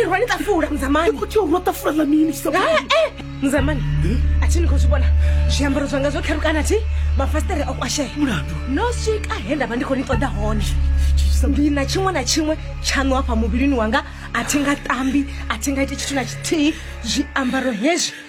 irwa ni ṱafula muzamani khou tea urwa ṱafula ḽa mini muzamani a thi ni khou zwi vhona zwiambaro zwanga zwo kherukana thi mafasiṱere o kwashea mulandu no swika he nda vha ndi khou ni ṱoḓa hone ndi na tshiṅwe na tshiṅwe tshaṋu hafha muvhilini wanga a thi nga tambi a thi nga ite tshithu na tshithihi zwiambaro hezwi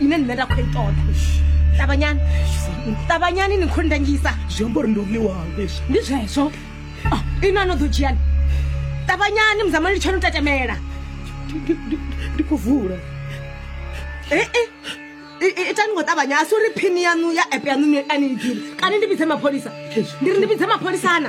ine nṋe nda khou i ṱoḓa ṱavhanyani ṱavhanyani ni khou ndangisa zwi amba uri ndi uḽiwawe ndi zwezwo oh, ino ano ḓo dzhiani ṱavhanyani muzamani litsho no tetemela ndi khou vula ee eh, eh. itani ngo ṱavhanya a si uri phini yanu ya app yanu ani i ḓiri kana ndi vhidze mapholisa ndi ri ndi vhidze mapholisana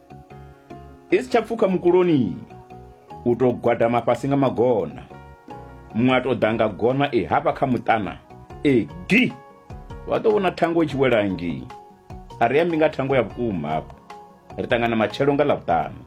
i si tsha pfuka mukuloni u tou gwadama fhasi nga magona muṅwe a tou ḓa nga gona e hafha kha muṱana e gi vha ḓo vhona thango i tshi wela ngei a ri ambi nga thango ya vhukuma hafho ri ṱangana matshelo nga ḽavhuṱanu